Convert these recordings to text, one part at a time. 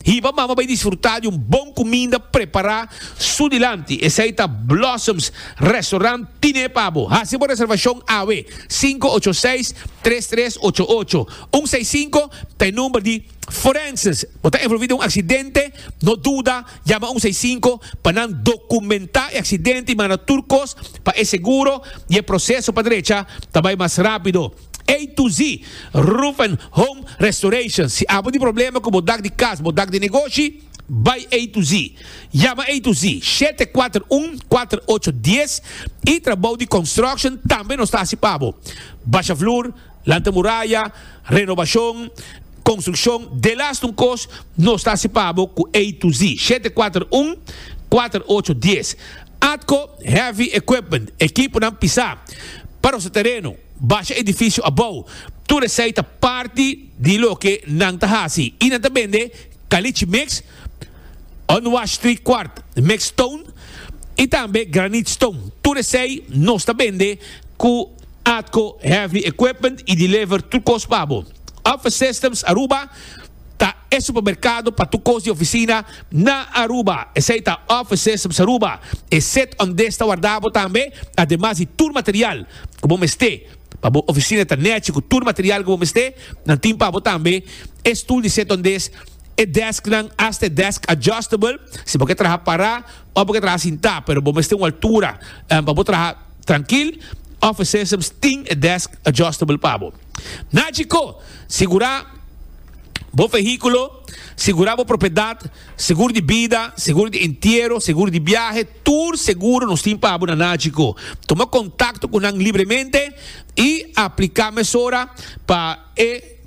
Hiba mama bay disfruta di un bon cuminda prepara su dilanti, esey ta Blossoms Restaurant tine pa bo. Haci bo reservacion awe, cinco ocho seis, tres tres ocho ocho, un seis cinco ta e number di Forenses. Bo ta envolvi den un accidente? No duda, yama un seis cinco pa nan documenta e accidente y manda tur cos pa e seguro y e proceso pa drecha ta bay mas rapido. A to Z, Roof and Home Restoration. Si abo di problema ku bo dak di kas, bo dak di negoshi, bai A to Z. Yama A to Z, shete kuater un, kuater ocho dies, i trabou di construction tambe nos ta hasi pa bo. Basha flur, lanta muraya, renobashon, konstrukshon, delas tun kos, nos ta hasi pa bo ku A to Z, shete kuater un, kuater ocho dies. Atco Heavy Equipment, ekiponan pisá, pa rosa tereno. Basha edifisio abou. Tur esei ta parti di loke nan ta hasi i nan ta bende kalichi mix, unwashtri kwart mix stone i tambe granit stone. Tur esei nos ta bende ku Atco Heavy Equipment i deliver tur kos pa bo. Office Systems Aruba. ta e supermerkado pa tur kos di ofisina na Aruba, esei ta Office Systems Aruba, e set ondes ta warda bo tambe, ademas di tur material ku bo mester pa bo ofisina ta nèchi ku tur material ku bo mester, nan tin pa bo tambe e stul di set ondes, e desknan asta e desk adjustable, si bo ke traha pará òf bo ke traha sintá pero bo mester un altura pa bo traha trankil, Office Systems tin e desk adjustable pa bo. Nacico, Sigura bo vehiculo, sigura bo propiedad, segur di bida, segur di entiero, segur di biahe, tur seguro nos tin pa bo na Nacico. Tuma contacto cu nan libremente y aplica mesora pa e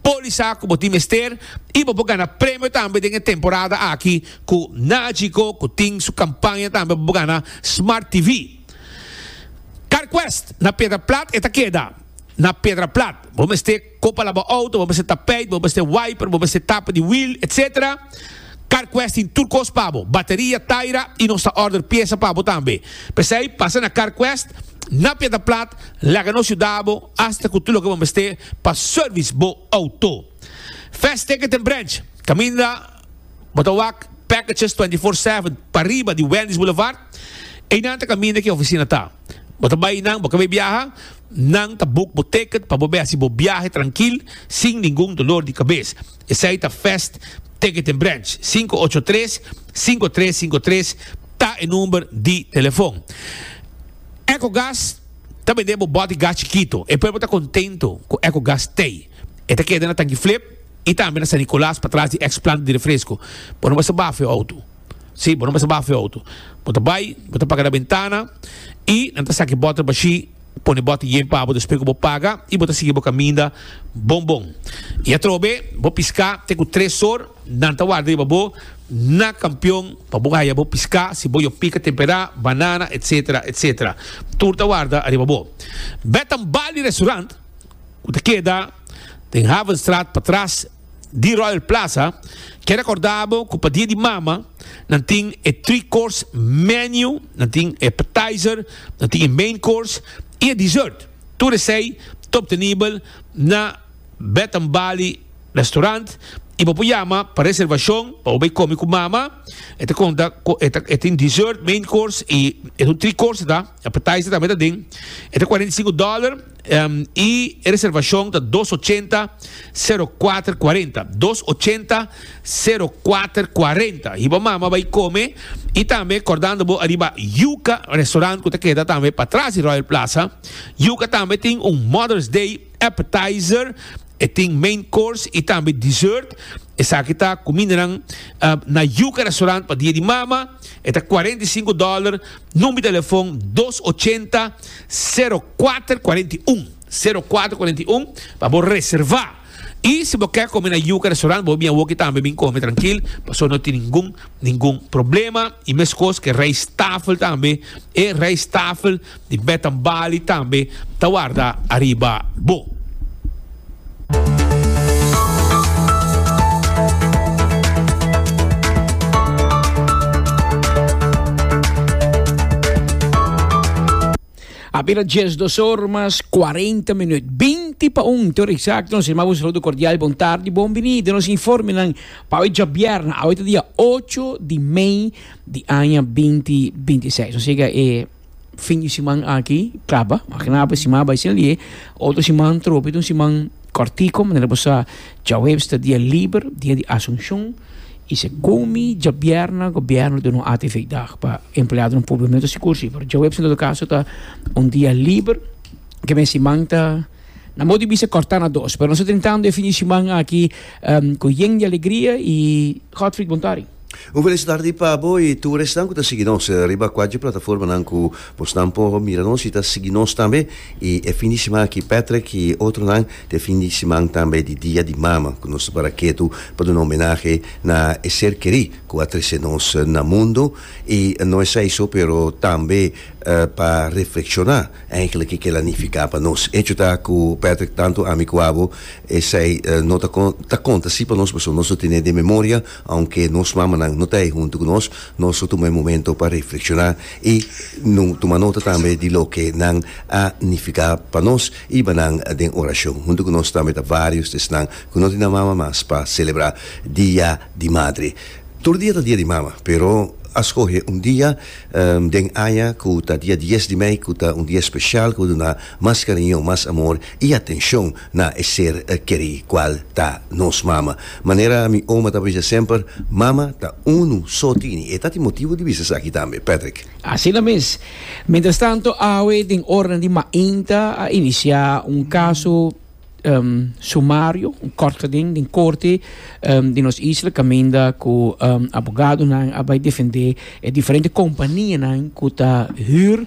polisa cu bo tin mester y bo por gana premio tambe den e temporada aki cu Nacico cu tin su campaña tambe pa bo gana Smart TV. Carquest, Na Piedra Plat e ta keda. Na Piedra Plat bo mester ko pa laba outo, bo mester tapeit, bo mester wiper, bo mester tapa di wiel, etc. Carquest tin tur kos pa bo, bateria, taira y nos ta order piesa pa bo tambe. P'esei pasa na Carquest, na Piedra Plat, laga nos yuda bo hasta cu tur loke bo mester pa service bo outo. Vesteke den Branch, caminda. Bo ta wak packages twenty four seven pariba di Wendy's Boulevard? Einan ta kaminda ki e oficina ta. Bo ta bai einan, bo ke bai biaha? Nan ta book bo ticket pa bo bai haci bo biahe trankil sin ningun dolor di cabes. Esai ta Fest Ticketing Branch, cinco ocho tres, cinco tres cinco tres ta e number di telefon. Ecogas ta bende bo bot di gas chikito. E pueblo ta contento cu Ecogas t'ey. E ta keda na Tanki Flip. I tambe na San Nicolas patras di ex planta di refresco. Bo no mester bafe bo auto. Sí, bo no mester bafe bo auto. Bo ta bai, bo ta paga na bentana i nan ta saki bòter bashí, pone bòter yen pa bo despues ku bo paga i bo ta sigui bo kaminda bon bon. I atrobe bo piská te ku tres or, nan ta warda riba bo na kampion pa bo haya bo piská, si bo yo pika temperá, banana, etsetera, etsetera. Tur ta warda ariba bo. Bèt tambal di restaurant. ku ta keda den Havenstraat patras di Royal Plaza, ke rekorda bo ku pa dia di mama nan tin e three course menu, nan tin e appetizer, nan tin e main course i e dessert. Tur esei ta obtenibel na Bath and Bali Restaurant i bo por yama pa reservashon pa bo bai komi ku mama. E ta konta ku e tin dessert, main course i esun three course ta. Appetizer tambe ta den. E ta cuarenta y cinco dólar y e reservacion ta dos ochenta zero cuater cuarenta. Dos ochenta zero cuater cuarenta. Hiba mama bay come y tambe cordando bo ariba Yuca restaurant cu ta keda tambe pa tras di Royal Plaza. Yuca tambe tin un Mother's Day appetizer. E tin main course y tambe dessert. Esaki ta cumindanan na Yuca restaurant pa dia di mama. E ta cuarenta y cinco dólar. Number di telefon dos ochenta, sero kuater kuarenta i un, sero kuater kuarenta i un, pa bo reservá. I si bo ke kome na Yuca Restaurant, bo bin awoki tambe bin kome trankil, pasobra no tin ningun ningun problema. I meskos ku e rijsttafel tambe, e rijsttafel di Bath and Bali tambe ta warda ariba bo. Abira dies dos or mas cuarenta minuut. Binti pa un, tur exacto. Nos irma, un saludo cordial, bon tarde, bon bini. De nos informe nan, pa hoy jabierna, hoy dia 8 di mei di aña 2026. Nos llega e... fin di siman aki kaba, aki nan ape siman a bai sin lie, otro siman tropi ta un siman kòrtiku, manera bo sa, djaweps ta dia liber, dia di Asunshon, i segunmi djabièrnè gobièrnu duna un atividat pa empleadonan públiko, mi no ta sigur si, pero djaweps en todo kaso ta un dia liber, ke mes siman ta, nan bou di bisa kòrtá na dos, pero nos ta tentando e fin di siman aki ku yen di alegria i Godfrid Bontari. Un felis tardi pa bo y tur esnan cu ta sigui nos riba cuatje plataformanan cu bosnan por mira nos y ta sigui nos tambe y e fin di siman aki Patrick y otronan ta e fin di siman tambe di Dia di Mama cu nos ta para ketu pa duna homenahe na e ser keri cu a trece nos na mundo y no esai so pero tambe pa reflecciona eindelijk kikela nifica pa nos. Hecho ta cu Patrick tanto ami cu abo esai no ta con ta conta si pa nos pasobra nos lo tene den memoria Aunke nos mamanan no ta ei huntu ku nos, nos lo tuma e momento pa reflekshoná i tuma nota tambe di loke nan a nifiká pa nos. Hiba nan den orashon huntu ku nos tambe ta vários di esnan ku no tin nan mama mas pa selebrá Dia di Madre. Tur dia ta Dia di Mama, pero a skohe un dia den aña ku ta dia dies di mei ku ta un dia spesial ku bo duna mas kariño, mas amor i atenshon. Na e ser kerí kual ta nos mama. Manera mi oma ta bisa semper, Mama ta unu so tini. E ta tin motibu di bisa esaki tambe. Patrick. Asina mes. Mientrastanto awe den ornan di mainta a inisiá un kaso sumario, un kòrtgeding den korte di nos isla kaminda ku abogadonan a bai defendé e diferente kompanianan ku ta hür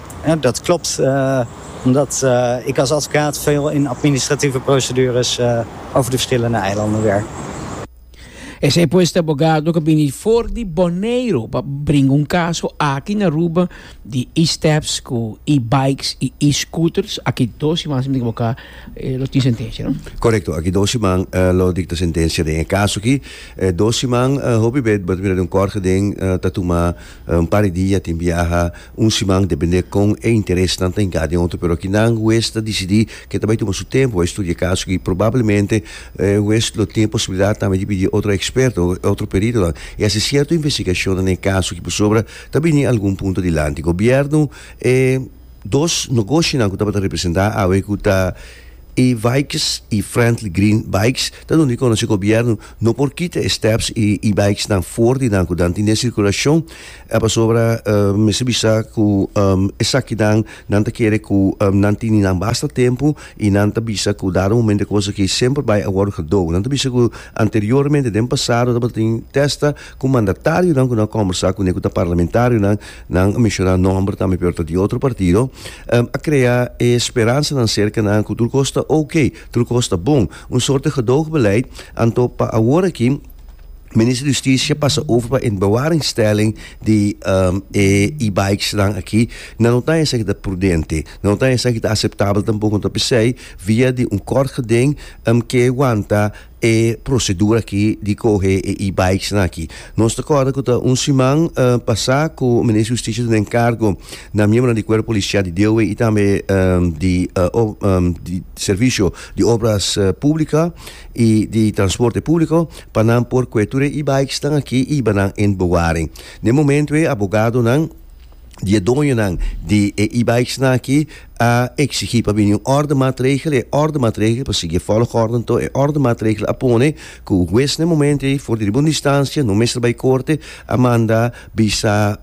Dat klopt, omdat ik als advocaat veel in administratieve procedures over de verschillende eilanden werk. Esei pues ta abogado cu bini for di Boneiru pa bringa un caso aki na Aruba di e-steps cu e-bikes y e-scooters. Aki dos siman, si mi no ta equivoca, lo tin sentencia, no? Correcto, aki dos siman lo dicta sentencia den e caso aki. Dos siman, hopi bet bo ta mira den un corte den ta tuma un par di dia tin biaha Un siman depende kon e interesnan ta hinká den otro, pero akinan hues ta disidí ku e ta bai tuma su tempu pa e studia e kaso aki. Probablemente e hues lo tin e posibilidat tambe di pidi otro eksperto, otro peritonan i hasi sierto investigashonnan den e kaso aki pasobra ta bini algun punto dilanti. Gobièrnu e dos nogoshinan ku tabata representá awe ku ta E-Vijks i Friendly Green Bikes ta duna di konosé gobièrnu no por kita e stèps i e-bikesnan for di nan ku nan tin den sirkulashon. E pasobra mester bisa ku esaki nan nan ta kere ku nan tin di nan basta tempu i nan ta bisa ku dado momento e kos aki semper bai a wòrdu kadou. Nan ta bisa ku anteriormente den pasado tabata tin tèsta ku mandatarionan ku nan a kòmbersá kuné ku ta parlamentarionan, nan a menshoná nòmber tambe pero ta di otro partido, a krea e speransanan serka nan ku tur kos ta okay, tur kos ta bon. Un sòrte gedoogbeleidt. Anto pa awor aki. Minister di Justicia pasa over pa en bewaringstelling di um, e e-bikes dan aki. Na no tan esaki ta prudente. Na no tan esaki ta aceptabel tampoco ta pisei via di un kort geding um, ke wanta e procedura aki di coge e e-bikes dan aki. Nos ta corda ku ta un siman uh, pasa ku Minister di Justicia den cargo na miembro di cuerpo policial di DOW y tambe um, di, uh, um, di servicio di obras uh, publica y di transporte publico pa nan por cue tur e e-bikes nan aki y iba nan in Boguari. Na e momento e abogadonan di e doñonan di e e-bikes nan aki a exigi pa bini un orde maatregel y e orde maatregel pa sigui e volgorde nto e orde maatregel a pone cu hues na e momento ey for di riba un distancia no mester bay corte a manda bisa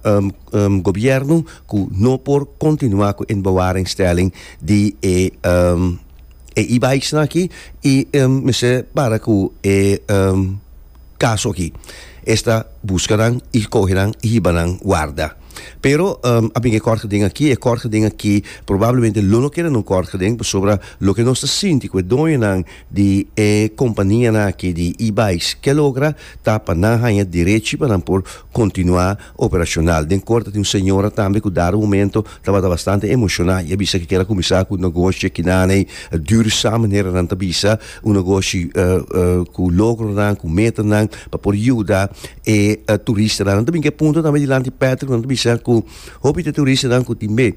gobierno cu no por continua cu in bewaringstelling di e e e-bikes nan aki y mester para cu e caso aki esta busca nan y coge nan y hiba nan warda pero a bin e kort geden aki e kort geden aki probablemente lo no keda no kort geden pasobra loke nos ta sinti cu e doño nan di e compania nan aki di e-bikes ke logra ta pa nan haya derechi pa nan por continua. Operacional. Den corte tin un señora tambe cu dado momento tabata bastante emociona y a bisa cu kier a cuminsa cu negoshi kinaney duurzam manera nan ta bisa, un negoshi cu logronan, cu metanan pa por yuda e turistanan. Nan ta bin cu e punto tambe dilanti Patrick, nan ta bisa cu hopi di e turistanan cu tin be.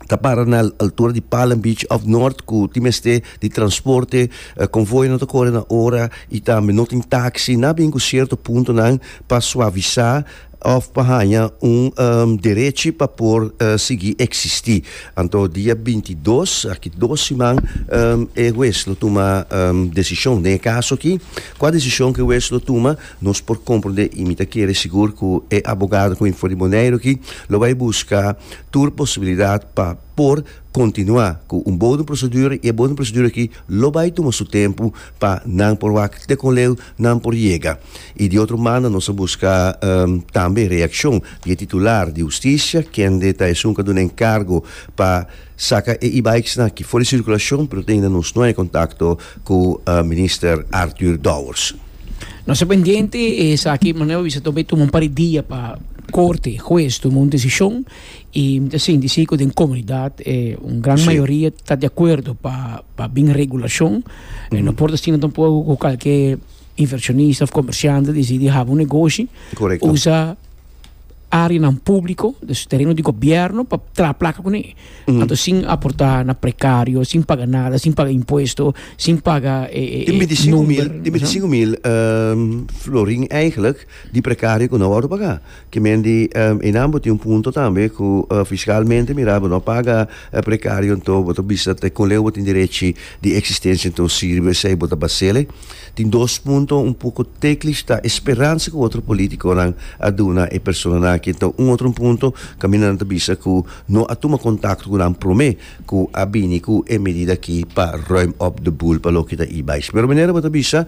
ta para na altura di Palm Beach of North ku ti mester di transporte uh, konvoy no ta kore na ora i tambe no tin taxi na bin ku sierto punto nan pa suavisa of pa haña un um, derechi pa por uh, sigui existi anto dia 22 aki dos siman um, e hues lo tuma um, decision den e caso ki kua decision ke hues lo tuma Nos por comprende y mi ta kere sigur cu e abogado cu infor di Boneiru aki lo bay busca tur posibilidad pa por continua cu un bodem procedura y e bodem procedura aki lo bay tuma su tempo pa nan por wak te con leu nan por yega. Y di otro banda nos ta busca tambe reaccion di e titular di Husticia kende ta esun cu a duna encargo pa Saka e e-bikes nan ki for di circulacion pero ta ainda nos no hay contacto cu Minister Arthur Dowers. Nos ta pendiente esaki, manera bo bisa ta bay tuma un par di dia pa corte, huez, tuma un decision y mi ta sinti si cu den comunidad un gran mayoria ta di acuerdo pa pa bin regulacion. No por ta asina tampoco cu calke inversionista of comerciante decidi haba un negoshi usa. áreanan públiko, dus tereno di gobièrnu pa traha plaka kuné. Anto sin aportá na prekario, sin paga nada, sin paga impuesto, sin paga e e Tin bintisiku mil, number, tin masha. bintisiku mil ehm, florin eigenlijk di prekario ku no wòrdu pagá. Ke men di ehm, einan bo tin un punto tambe ku eh, fiskalmente mirá bo no paga eh, prekario anto bo ta bisa te kon leu bo tin derechi di eksistensia anto sirbi esei bo ta basele. Tin dos punto un poco teklish ta e speransa cu otro politiconan a duna e personanan aki ta un otro punto caminda nan ta bisa cu no a tuma contacto cu nan prome cu a bini cu e medida aki pa ruim op de boel pa loke ta ibai. Señor Minera bo ta bisa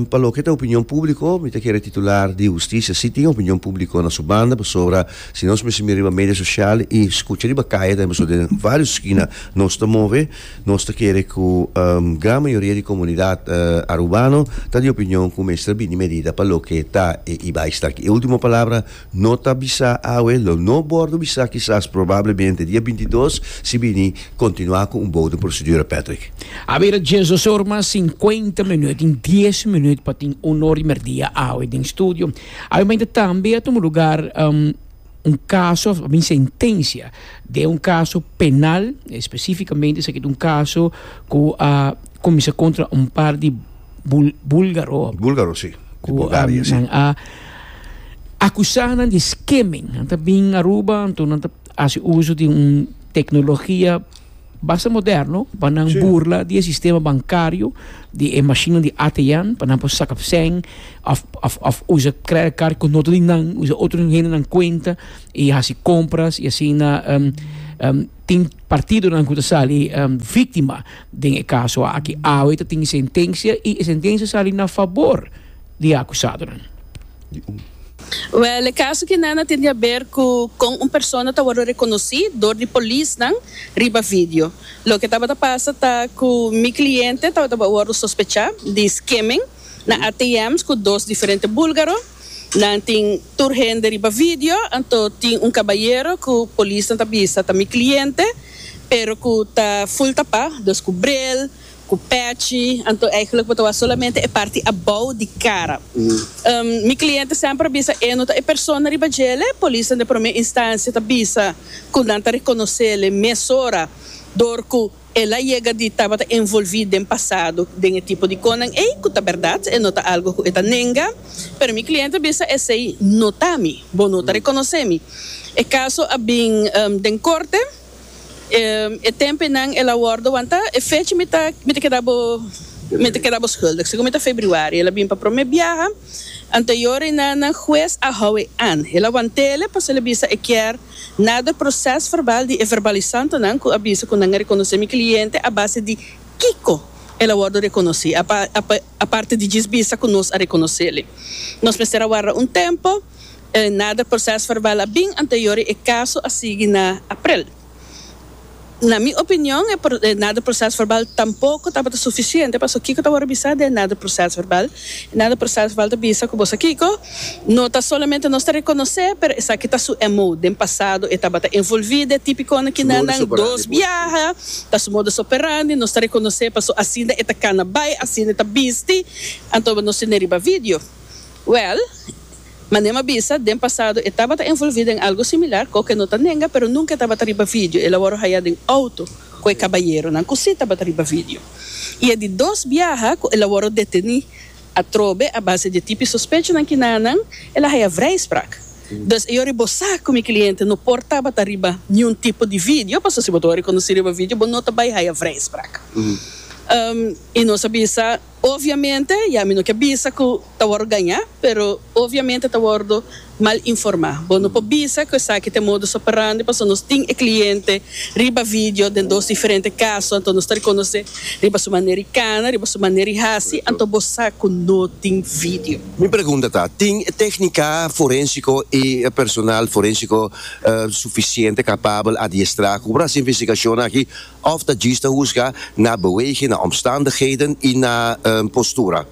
pa loke ta opinion publico mi ta kere titular di Husticia si tin opinion publico na su banda pasobra si nos mester mira riba media social y scucha riba caye tambe pasobra den varios skina nos ta move Nos ta kere ku gran mayoria di komunidat arubano ta di opinion ku mester bini medida pa loke ta e i bai staki. E ultimo palabra no ta bisa awe, lo no bòrdu bisa kisas probablemente dia bintidos si bini kontinuá ku un bouden prosedura, Patrick. A bira dies dos or mas sinkuenta minüt tin dies minüt pa tin un or di merdia awe den studio. Awe mainta tambe a tuma lugar. un kaso of ta bin sentensia den un kaso penal, espesifikamente esaki ta un kaso ku a kuminsá kontra un par di búlgaro. Búlgaro, si. Di Bulgaria, si. Ku nan a akusá nan di skimming. Nan ta bin Aruba, anto nan ta hasi uso di un teknologia. Basta moderno pa nan sí. burla di e sistema bankario, di e mashinnan di ATM, pa nan por saka pseng, of, of, of usa credit card ku noto di nan, usa otro hende nan kuenta, i hasi kompras, i asina, um, um, tin partidonan ku ta sali um, víktima den e kaso aki. Awe ta tin sentensia, i e sentensia sali na fabor di e akusadonan. Well, e caso aki nan a tin di haber cu con un persona ta wordo reconoci door di polisnan riba video. Loke tabata pasa ta cu mi cliente tabata wordo sospecha di skimming na ATM's cu dos diferente bulgaro. Nan tin tur hende riba video, anto tin un cabayero cu polisnan ta bisa ta mi cliente pero cu ta full tapa, dus cu bril, Cu patchy, anto eigenlijk bo ta wak solamente e parti abou di cara. Mi cliente semper a bisa e no ta e persona riba djele. Polisnan den prome instancia ta bisa cu nan ta reconocele mesora door cu el a yega di tabata envolvi den pasado den e tipo di conan ey, cu ta berdad, e no ta algo cu e ta nenga. Pero mi cliente a bisa esey no ta mi, bo no ta reconoce mi. E caso a bin den corte. E tempenan el a worde wanta e fecha mi ta mi ta keda bo mi ta keda bo skuldig segun mi ta febriuari el a bin pa prome biaha anteyor e na na hues a hou e an el a wantele pasobra el a bisa e kier nader proces verbal di e verbalisantonan ku a bisa ku nan a rekonosé mi kliente a base di kiko el a worde rekonosí apa apa aparte di djis bisa ku nos a rekonosele nos mester a warda un tempo E nader proces verbal a bin anterior y e caso a sigui na aprel. Na mi opinion e nader proces verbal tampoco tabata suficiente pasobra kico ta wordo bisa den e nader proces verbal? E nader proces verbal ta bisa cu boso kico? No ta solamente nos ta reconoce pero esaki ta su MO. Den pasado e tabata envolvi den e tipiconan kinan nan dos biaha, ta su modus operandi, nos ta reconoce pasobra asina e ta cana bay, asina e ta bisti, anto nos tin den riba video. Well. Manem a bisa, den pasado e tabata envolví den algu similar, cu oca e no ta nenga, pero nunca e tabata riba video, el a wòrdu hayá den auto cu e cabayeronan cu sí tabata riba video. I e di dos biaha cu el a wòrdu detení atrobe a base di e tipi sospechonan ki na nan, el a hayá vrijspraak. Dus e yòri bo sa cu mi cliente no por tabata riba niun tipo di video, pasobra si bo ta wòrdu riconocí riba video bo no ta bay hayá vrijspraak. I nos a bisa. Obviamente ya mi no ke bisa ku ta wordo gañá, pero obviamente ta wordo mal informá. Bo no por bisa ku esaki ta e modus operandi pasobra nos tin e kliente riba video den dos diferente kaso, anto nos ta rekonosé riba su manera di kana, riba su manera di hasi, anto bo sa ku no tin video. Mi pregunta ta, tin e téknika forensiko i e personal forensiko sufisiente kapabel, adiestrá, ku por hasi investigashonnan aki Òf ta djis ta husga na beweging, na omstandigheden i na postura?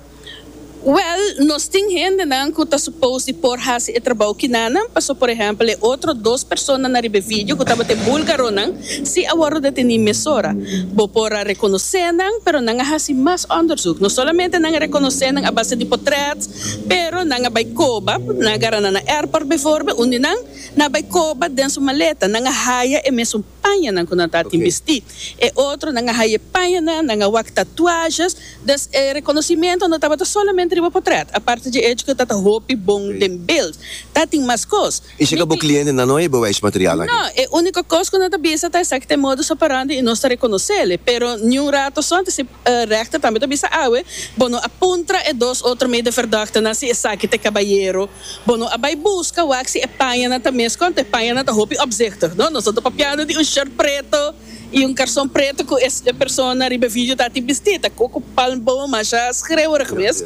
Wèl, nos tin hendenan ku ta supos di por hasi e trabou kinanan. Pasó por ehèmpel e otro dos persona na riba e vidio ku tabata e bulgaronan, si a wòrdu detení mesora. Bo por a rekonosé nan, pero nan a hasi mas òndersuk. No solamente nan a rekonosé nan a base di potrèt, pero nan a bai koba, nan a gara nan na airport, befòrbe, unda nan na bai koba den su maleta. Nan a haya e mesun. pañanan ku nan ta tin bistí. E otronan a haye pañanan, nan a wak tatuashas, dus e rekonosimentu no tabata solamente riba potrèt. Aparte dje echo ku ta ta hopi bon den bild, ta tin mas kos. I si ka bo klientenan no a heba wèsh material aki? No, e úniko kos ku nan ta bisa ta esaki ta e modus operandi i nos ta rekonosel e, pero niun rato sòn ta si. E rechter tambe ta bisa, Awe, bo no a puntra e dos otro medeverdagtenan si esaki ta e kabayero? Bo no a bai buska wak si e pañanan ta mes kònta? E pañanan ta hopi opzichtig, no? Nos no ta papiando di un short preto i un karson preto ku e persona riba e video ta tin bistí. Ta ku ku palmboom masha skrewerig mes.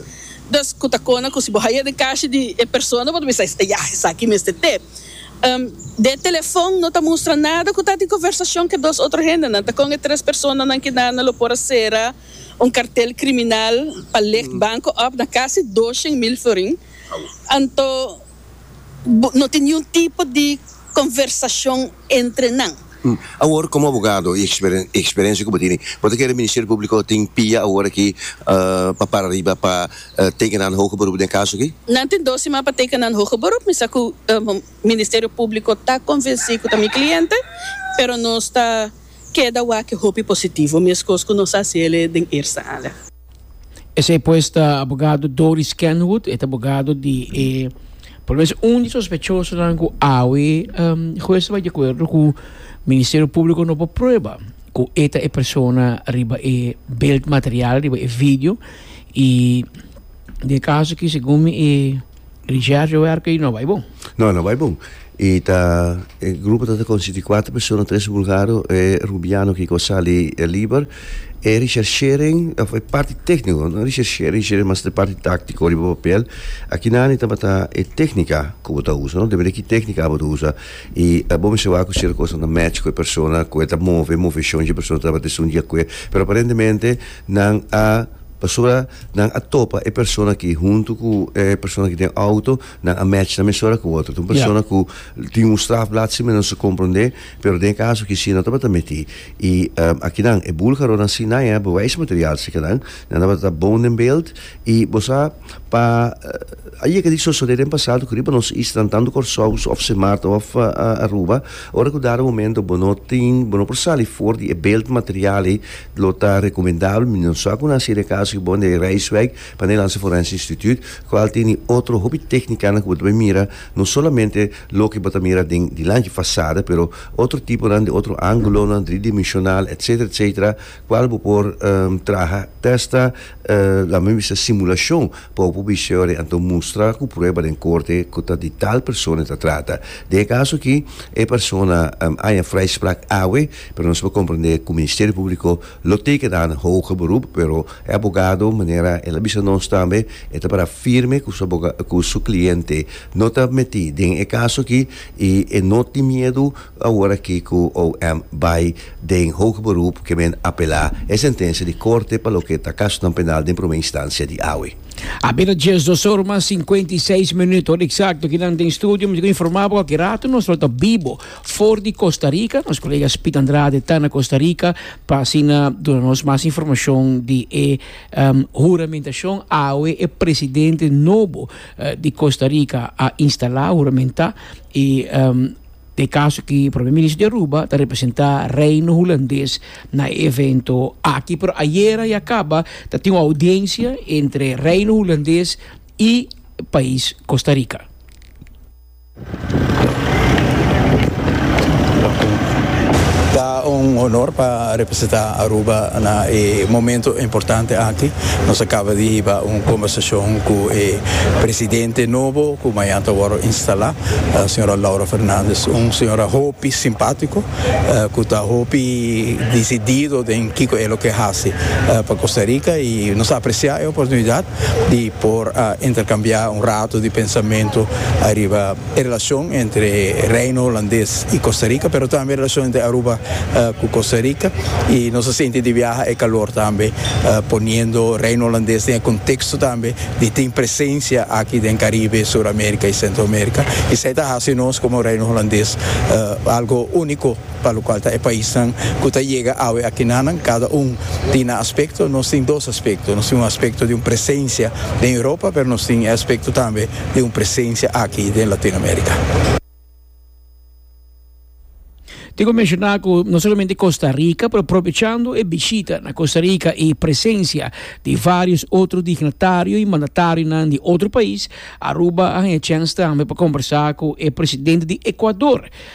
Dus ku ta kona ku si bo haya den kashi di e persona bo ta bisa, Esaki mester te. Den e telefon no ta mustra nada ku ta di konversashon ku e dos otro hendenan. Ta kon e tres personanan kinannan lo por a sera un kartel kriminal pa licht banko òf na kasi doshen mil florin. Anto no tin niun tipo di konversashon entre nan. Awor komo abogado i e eksperensia ku bo tin, bo ta kere Ministerio Públiko tin pia awor aki pa para riba pa teken nan hoge beroep den e kaso aki? Nan tin dos siman pa teken nan hoge beroep. Mi sa ku Ministerio Públiko ta konvensí ku ta mi kliente, pero nos ta keda wak hopi positivo, meskos ku nos a hasié den eerste aale. Esei pues ta abogado Doris Kenwood, e ta abogado di e por lo menos un di sospechosonan ku awe hues ta bai di akuerdo ku Ministerio Públiko no por prueba ku e ta e persona riba e beeldmateriaal, riba e video i den e kaso aki segun mi e Richard yo werk ei no bai bon. No no bai bon i ta e grupo ta ta konsisti kuater persona tres bulgaro e rubiano ki ko sali e liber e Richard Schering of e parti tekniko no Richard Schering Schering mas ta e parti taktiko riba papel akinani tabata e teknika ku bo ta usa no depende ki teknika abo ta usa i bo mester wak ku cierto kosnan ta match ku e persona ku e ta move moveshon shi e persona tabata esun di akue pero aparentemente nan a. Pasobra nan a topa e persona aki huntu ku e persona ki den outo, nan a match nan mesora ku otro. Ta un persona ku tin un strafblad si menos su komprondé, pero den e kaso aki si nan tabata mití. I akinan e bulgaronan si nan a bewijsmateriaal seka nan, nan tabata bon den beeld. I bo sa pa a yega di sosodé den pasado ku riba nos islanan, tantu Kòrsou òf Sin Maarten òf Aruba, ora ku dada momento bo no tin, bo no por sali for di e beeldmateriaal ei, Lo ta recomendabel mi no sa cu nan siria caso di Bonda y Rijswijk pa nan e lansa forense instituut, cual tene otro hopi tecnicanan cu bo ta bay mira, no solamente loke bo ta mira den dilanti, fasada, pero otro tiponan den otro angulonan, driedimensional, etc. Etc. Cual bo por traha testa, lamen bisa simulacion, pa bo por bisa yori anto mustra cu prueba den corte cu ta di tal persona e ta trata. Den e caso aki e persona aya vrijspraak awe. Pero nos por comprende cu Ministerio Publico lo teken ta na hoge beroep, pero e abogado manera el a bisa nos tambe e ta para firme cu su aboga cu su cliente no ta meti den e caso aki y e no tin miedu aworaki cu OM bay den hoge beroep ke men apela e sentencia di Corte pa loke ta casonan penal den prome instancia di awe. A bira diesdos or mas cincuenta y seis minuut. Hora exacto ki nan den studio mi ta informa bo cu aki rato nos lo ta bibo. For di Costa Rica, nos colega Spit Andrade ta na Costa Rica pa asina duna nos mas informacion di e um, huramentacion awe e presidente nobo uh, di Costa Rica a instala, huramenta, y um, de caso ki primer ministro di Aruba ta representa Reino Hulandes na e evento aki. Pero ayera ya caba ta tin audiencia entre Reino Hulandes y pais Costa Rica. Ta un honor pa representa Aruba na e momento importante aki. Nos a caba di hiba un combersacion cu e Presidente nobo cu mañan ta wordo instala, Sra. Laura Fernandez. Un señora hopi simpatico cu ta hopi decidido den kico e lo ke haci pa Costa Rica y nos a aprecia e oportunidad di. por a intercambia un rato di pensamentu ariba e relacion entre Reino Holandes y Costa Rica, pero tambe e relacion entre Aruba cu Costa Rica y nos a sinti di viaha e calor tambe poniendo Reino Holandes den e contexto tambe di tin presencia aki den Caribe, Sur America y Centro America y esai ta haci nos como Reino Holandes algo unico. pa lo cual ta e paisnan cu ta yega awe aki na nan, cada un tin nan aspecto, nos tin dos aspecto, nos tin un aspecto di un presencia den Europa, pero nos tin e aspecto tambe di un presencia aki den Latinoamerica. Diego menciona cu no solamente Costa Rica, pero propichando e bishita na Costa Rica y presencia di varios otro dignatario y mandatarionan di otro pais, Aruba a haña chens tambe pa combersa cu e presidente di Ecuador,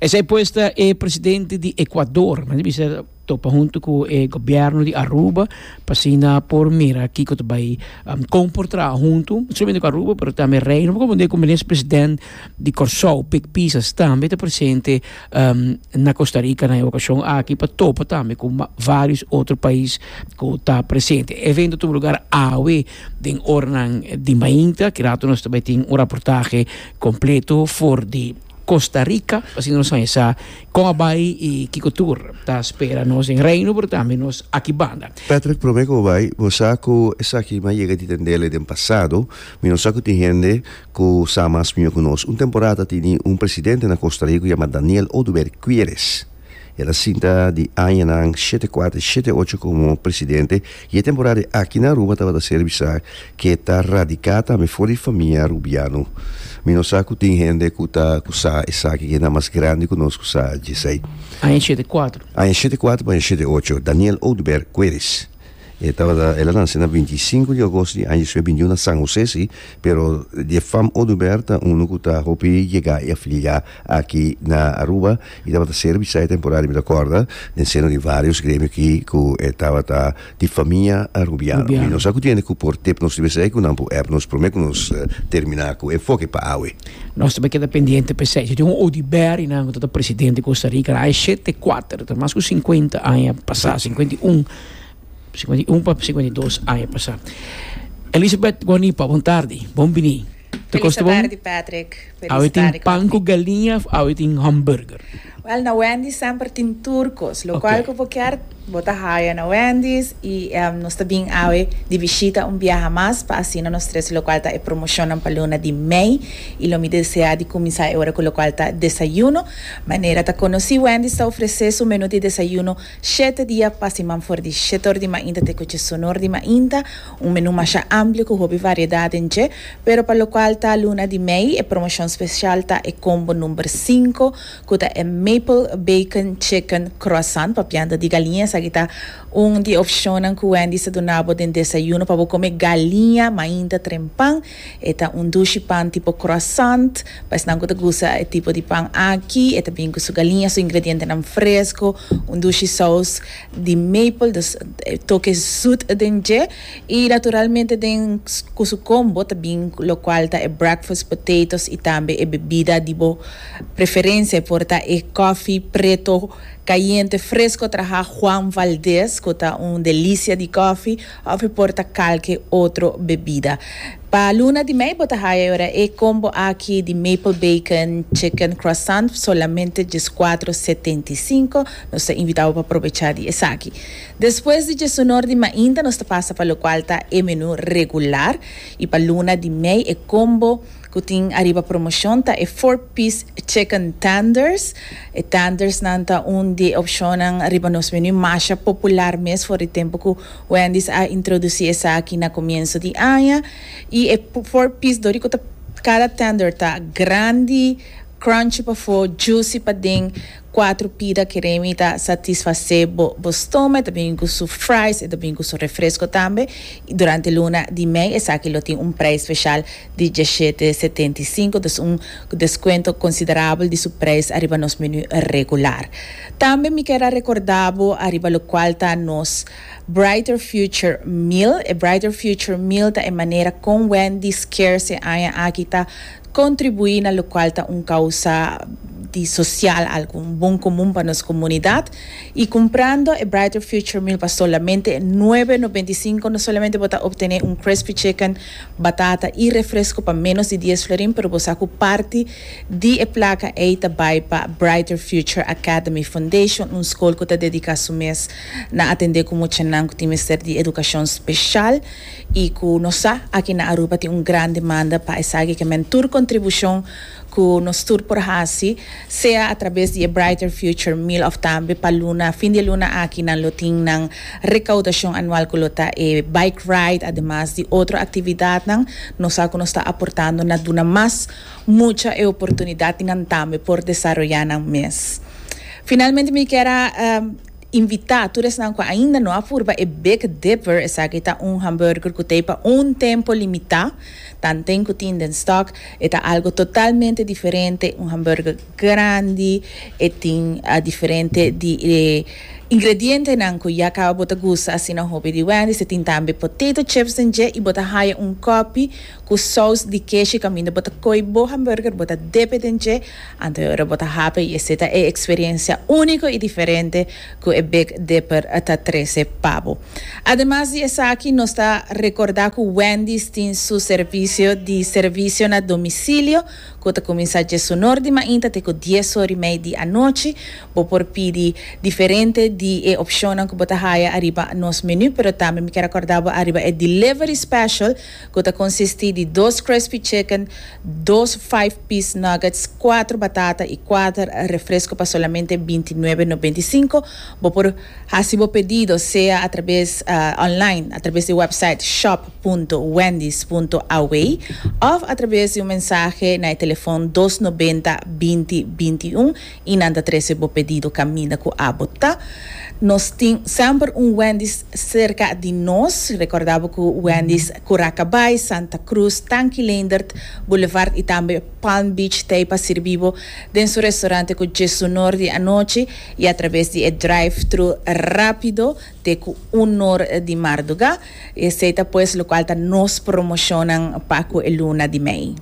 Esei pues ta e presidente di Ecuador, mester bisa topa huntu ku e gobierno di Aruba pa asina por mira kiko ta bai um, kon por traha huntu, no solamente ku Aruba pero tambe Reino, por kumente ku menes president di Kòrsou, Pik Pisas, tambe ta presente um na Kosta Rika na e okashon aki pa topa tambe ku vários otro pais ku ta presente. E evento tudu lugar awe den oranan di mainta, ki rato nos ta bai tin un raportahe kompleto for di Costa Rica, asina nos a sa con a bay y kico tur ta spera nos den Reino pero tambe nos aki banda. Patrick, prome cu bo bay, bo sa cu esaki no a yega di tendele den pasado, mi no sa cu tin hende cu sa mas mijo cu nos. Un temporada a tini un presidente na Costa Rica cu yama Daniel Oduber Quiéres. El a sinta di añanan shete kuater, shete ocho komo presidente i e temporada di aki na Aruba tabata ser bisa ke ta radiká tambe for di famia arubiano. Mi no sa ku tin hende ku ta ku sa esaki ke na mas grandi ku nos ku sa dje esei. Aña shete kuater. Aña shete kuater pa aña shete ocho, Daniel Oduber Cueris. E tabata el a nace na binti i sinku di augos di aña dispue binti un na San Jose si pero di e fam Oduber ta uno cu ta hopi yega y a fini yega aki na Aruba y tabata ser bisaya temporario mi ta corda den seno di varios gremio aki cu e tabata di famia Arubiano y nos a cu tiene cu por tep nos di bisaya cu nan por ep nos prome cu nos termina cu enfoke pa awe. Nos ta keda pendiente p'esei. Si tin un Udi Beri nan ku ta ta presidente di Costa Rica, nan a eshe te kuater, ta mas ku sinkuenta aña pasá, sinkuenta i un, sinkuenta i un pa sinkuenta i dos aña pasá. Elizabeth Guanipa, bon tardi, bon biní. Feliz tardi Patrick, feliz tardi Corfi. Awe tin pan ku galiña of awe tin hòmburger? Wèl na Wendy's semper tin tur kos lo kual ku bo kier bo ta haya na Wendy's i nos ta bin awe di bishita un biaha mas pa asina nos tres lo kual ta e promoshonnan pa luna di mei i lo mi desea di kuminsá e ora ku lo kual ta desayuno manera ta konosí Wendy's ta ofresé su menú di desayuno shete dia pa siman for di shete or di mainta te ku chesonor di mainta Un menú masha amplio ku hopi variedad den dje, pero pa lokual ta luna di mei e promoshon spesial ta e kombo number sinku ku ta e Maple Bacon Chicken Croissant pa pianta di galiña. Esaki ta un di e opshonnan ku Wendy's ta duna bo den desayuno pa bo kome galiña mainta trempan. E ta un dushi pan tipo croissant. Pa esnan ku ta gusta e tipo di pan aki e ta bin ku su galiña, su ingredientenan fresko, un dushi sous. di maple, dus e toke zoet den dje y naturalmente den cu su combo ta bin lo cual ta e breakfast potatoes y tambe e bebida di bo preferencia, e por ta e coffee preto cayente fresco traha Juan Valdez cu ta un delicia di coffee. Of e por ta kalke otro bebida. Pa luna di mei bo ta haya e ora e combo aki di Maple Bacon Chicken Croissant F solamente dieskuatro setenta i sinku. Nos ta invita bo pa probecha di esaki. Despues di diesunor di mainta nos ta pasa pa lokual ta e menu regular. I pa luna di mei e combo. Ku tin ariba promoshon ta e four piece chicken tenders. E tenders nan ta un di e opshonnan riba nos menu masha popular mes for di tempu ku Wendy's a introdusí esaki na komienso di aña. I e four piece dor di ku ta kada tender ta grandi, crunchy pafó, juicy paden. Cuatro pida kere mi ta satisfacé bo bo stoma, e ta bini cu su fries, e ta bini cu su refresco tambe, y durante luna di mei esaki lo tin un prijs special di diecisiete setenta y cinco, dus un descuento considerable di su prijs ariba nos menu regular. Tambe mi ker a recorda bo ariba locual ta nos Brighter Future Meal, e Brighter Future Meal ta e manera con Wendy's ker se aña aki ta Kontribuí na lokual ta un kousa di sosial algu, un bon komun pa nos komunidat. I kumprando e Brighter Future Meal pa solamente nuebe nobenta i sinku no solamente bo ta optené un crispy chicken, batata i refresku pa ménos di dies florin pero bo sa ku parti di e plaka ei ta bai pa Brighter Future Academy Foundation, un skol ku ta dediká su mes na atendé ku muchanan ku tin mester di edukashon speshal. y cu nos sa aki na Aruba tin un gran demanda pa esaki ke men tur contribucion cu nos tur por haci, sea a traves di e Brighter Future Meal of tambe pa luna, fin di e luna aki nan lo tin nan recaudacion anual cu lo ta e bike ride ademas di otro actividadnan, nos sa cu nos ta aportando na duna mas mucha e oportunidad y nan tambe por desaroya nan mes. Finalmente mi kier a. Invitá tur esnan ku ainda no a purba e Big Dipper, esaki ta un hamburger ku ta ei pa un tempu limitá, tanten ku tin den stòk. E ta algu totalmente diferente, un hamburger grandi, e tin diferente di e ingredientenan ku ya kaba bo ta gusta asina hopi di Wendy's. E tin tambe potato chips den dje i bo ta haya un kòpi ku sous di keshi kaminda bo ta ko'i bo hamburger, bo ta dip e den dje. Anto ora bo ta happy y esey ta e experiencia unico y diferente cu e Big Dipper ta trece pa bo. Ademas di esaki nos ta recorda cu Wendy's tin su servicio di servicio na domicilio cu ta cuminsa diesunor di mainta te cu dies horimei di anochi. Bo por pidi diferente di e opcionnan cu bo ta haya ariba nos menu pero tambe mi kier a corda bo ariba e delivery special. cu ta consisti di dos crispy chicken, dos five piece nuggets, cuatro batata y cuater refresco pa solamente binti nuebe nobenta y cinco. Bo por haci bo pedido sea a traves online a traves di website shop punto wendys punto aw of a traves di un mensahe na e telefon dos nobenta binti binti un. y nan ta trece bo pedido caminda cu abo ta, nos tin semper un Wendy's cerca di nos, recorda bo cu Wendy's Curacabai, Santa Cruz, Tanki Leendert Boulevard y tambe Palm Beach t'ey pa sirbi bo den su restaurante cu dje su nor di anochi y a traves di e drive-thru rapido te cu unor di marduga, y esey ta pues locual ta nos promocionnan pa cu e luna di mei.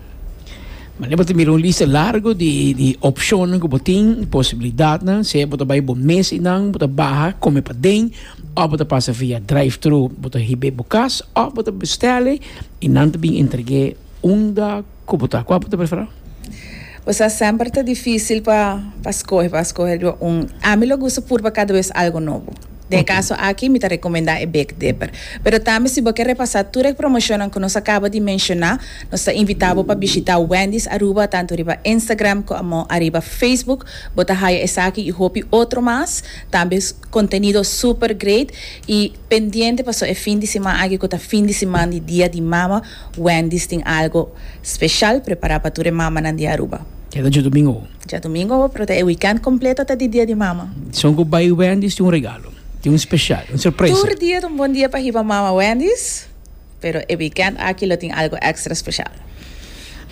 Manera bo ta mira un lista largo di di opcionnan cu bo tin, di posibilidadnan, sea bo ta bay bo mes y nan bo ta baha come paden, of bo ta pasa via drive-thru, bo ta hibe bo cas, of bo ta bestele y nan ta bin entrege. Unda ku bo ta? Kua bo ta prefera? Pues a semper ta difisil pa pa skohe pa skohe riba un a mi lo gusta purba kada bes algo nobo den e kaso aki mi ta rekomendá e Big Dipper pero tambe si bo ke repasá tur e promoshonnan ku nos a kaba di menshoná nos ta invitá bo pa bishitá Wendy's Aruba tantu riba Instagram komo ariba Facebook bo ta haya esaki i hopi otro mas tambe kontenido super great i pendiente paso e fin di siman aki ku ta fin di siman di Dia di Mama Wendy's tin algo special prepara pa tur e mamanan di Aruba. E ta djadomingo. Djadomingo, pero ta e weekend completo ta di dia di mama. Dison cu bay Wendy's tin un regalo, tin un special, un sorpresa. Tur dia ta un bon dia pa hiba mama Wendy's, pero e weekend aki lo tin algo extra special.